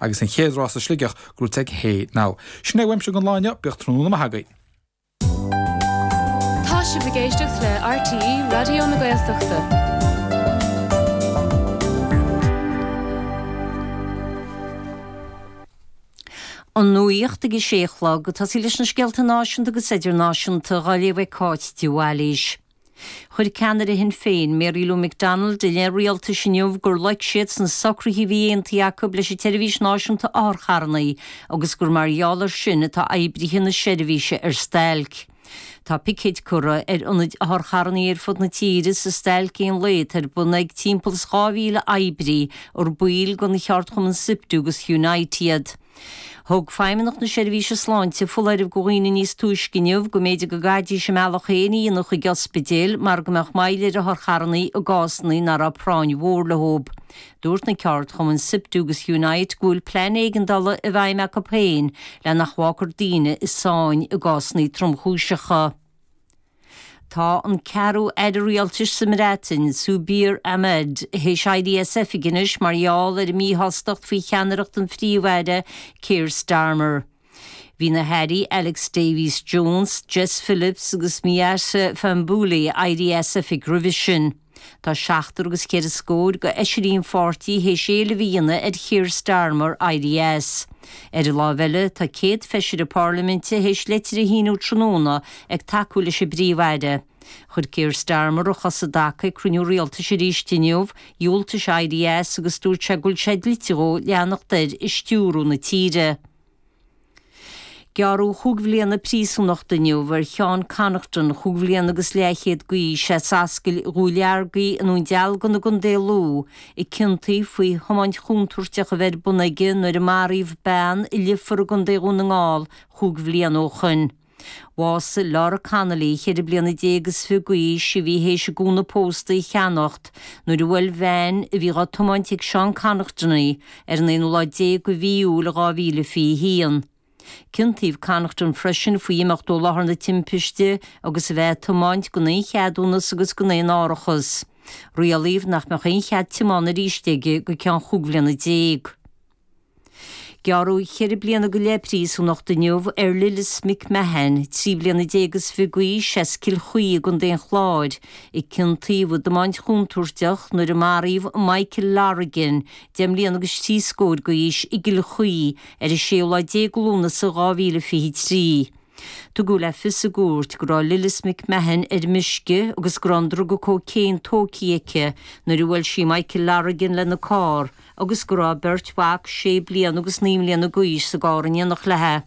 Agus an chéad rás i Sligeach, gnóite ag Hey now. Sin é uaimse don lá inniu, bíodh tráthnóna maith agaibh. Tá sibh ag éisteacht le RTÉ Raidió na Gaeltachta. An Nuacht ag a sé a chlog. Ag tosaí leis na scéalta náisiúnta agus idirnáisiúnta dhá léamh ag Cáit de Bhailís. Chuir ceannaire Shinn Féin, Mary Lou McDonald, i leith an rialtais inniu gur loic siad sna socruithe a bhí aontaithe acu leis an tSeirbhís Náisiúnta Otharcharrannaí agus gur mar gheall air sin atá oibrithe na seirbhíse ar stailc. Tá picéid curtha ar ionaid otharcharrannaí ar fud na tíre sa stailc aon lae atá ar bun ag timpeall is 2,000 oibrí ar baill den dá cheardchumann Siptu agus Unite iad. Thug Feidhmeannacht na Seirbhíse Sláinte foláireamh go dhaoine níos túisce inniu go mb'fhéidir go gcaithfidís a mbealach féin a dhéanamh chuig ospidéil mar go mbeadh moill ar otharcharrannaí i gcásanna ná raibh práinn mhór leo. Dúirt na ceardchumainn Siptu agus Unite go bhfuil plean éigeandála i bhfeidhm acu féin le nach bhfágfar daoine i sáinn i gcásanna tromchúiseacha. Tá an ceathrú aire rialtais sa mBreatain, Zubir Ahmed, théis éirí as oifig anois mar gheall ar a míshástacht faoi cheannaireacht an phríomh-aire, Keir Starmer. Bhí na hairí Alex Davies-Jones, Jess Phillips agus Miatta Fahnbulleh éirithe as oifig roimhe sin. Tá seachtar agus ceithre scór go fheisirí an pháirtí théis éileamh a dhéanamh ar Keir Starmer éirí as. Ar an láimh eile, tá 100 feisire Parlaiminte théis leitir a shíniú tráthnóna ag tacú leis an bPríomh-Aire. Chuir Keir Starmer a chos i dtaca ag cruinniú rialtais arís inniu, dhiúltaigh sé éirí as agus dúirt sé go bhfuil sé dlite dhó leanacht air ag stiúrú na tíre. Gearradh chúig bhliana príosúnachta inniu ar Sheán Connaughton, chúig bhliana agus leathchéad d'aois, as Ascaill Dhúleargaí i nDún Dealgan i gContae Lú, a ciontaíodh faoi thiomáint chontúirteach a bheith ar bun aige nuair a maraíodh bean i Leifear i gContae Dhún na nGall chúig bhliana ó shoin. Bhásaigh Laura Connolly, ceithre bliana déag is fiche d'aois, a bhí théis a gúna pósta a cheannacht, nuair a bhuail veain, a bhí dhá tiomáint ag Seán Connaughton, í, ar an aonú lá déag de Mhí Iúil 2021. Ciontaíodh Connaughton freisin faoi imeacht ó láthair na timpiste agus a bheith ag tiomáint gan aon cheadúnas agus gan aon árachas. Rialaíodh nach mbeadh aon chead tiomána arís aige go ceann chúig bhliana déag. Gearradh ceithre bliana go leith príosúnachta inniu ar Lillis McMahon, trí bliana déag is fiche d'aois, as Cill Chaoi i gContae an Chláir, a ciontaíodh i dtiomáint chontúirteach nuair a maraíodh Michael Lorigan, deich mbliana agus trí scór d'aois, i gCill Chaoi ar an séú lá déag de Lúnasa 2023. Tugadh le fios i gcúirt go raibh Lillis McMahon ar meisce agus go raibh an druga cocaine tógtha aici nuair a bhuail sí Michael Lorigan lena carr, agus go raibh a beirt mhac sé bliana agus naoi mbliana d'aois sa gcarr in éineacht leithe.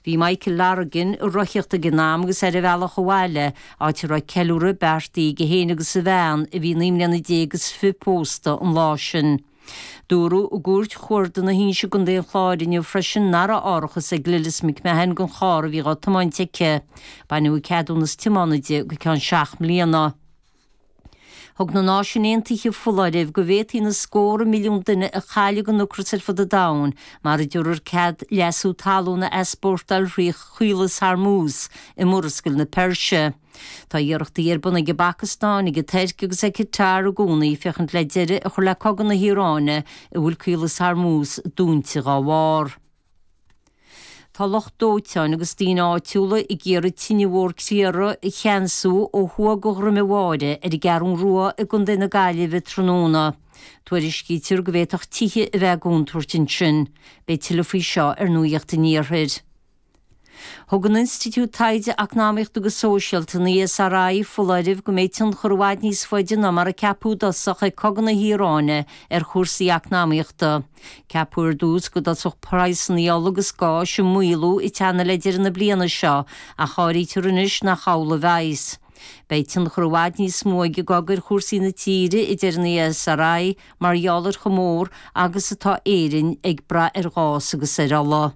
Bhí Michael Lorigan ag rothaíocht ag an am agus ar a bhealach abhaile, áit a raibh ceiliúradh beartaithe aige féin agus a bhean, a bhí naoi mbliana déag agus fiche pósta an lá sin. Dúradh i gCúirt Chuarda na hInse i gContae an Chláir inniu freisin nach raibh árachas ag Lillis McMahon don charr a bhí dhá tiomáint aici. Baineadh a ceadúnas tiomána di go ceann seacht mbliana. Thug na Náisiúin Aontaithe foláireamh go bhféadfaí na scórtha milliún duine a chailleadh le ocras ar fud an domhain mura dtabharfar cead leasú talún a easpórtáil thrí Chaolas Hormuz i Murascaill na Peirse. Tá iarrachtaí ar bun ag an bPacastáin, ag an Tuirc agus ag Catar i gcónaí féachaint le deireadh a chur le cogadh na hIaráine a bhfuil Caolas Hormuz dúnta dá bharr. Tá lucht dóiteáin agus daoine áitiúla ag iarraidh tine mhór criathraigh a cheansú ó thuaidh de Dhroim an Bháire ar an gCeathrú Rua i gContae na Gaillimhe tráthnóna. Tuairiscítear go bhféadfadh tithe a bheith i gcontúirt ansin. Beidh tuilleadh faoi seo ar Nuacht an Iarthair. Thug an Institiúid Taighde Eacnamaíochta agus Sóisialta, an ESRI, foláireamh go mbeidh tionchar i bhfad níos faide ná mar a ceapadh i dtosach ag Cogadh na hIaráine ar chúrsaí eacnamaíochta. Ceapadh ar dtús go dtosódh praghsanna ola agus gáis ag maolú ag teannadh le deireadh na bliana seo ach áirítear anois nach amhlaidh a bheas. Beidh tionchar i bhfad níos mó ag an gcogadh ar chúrsaí na tíre, a deir an ESRI, mar gheall ar chomh mór agus atá Éirinn ag brath ar ghás agus ar ola.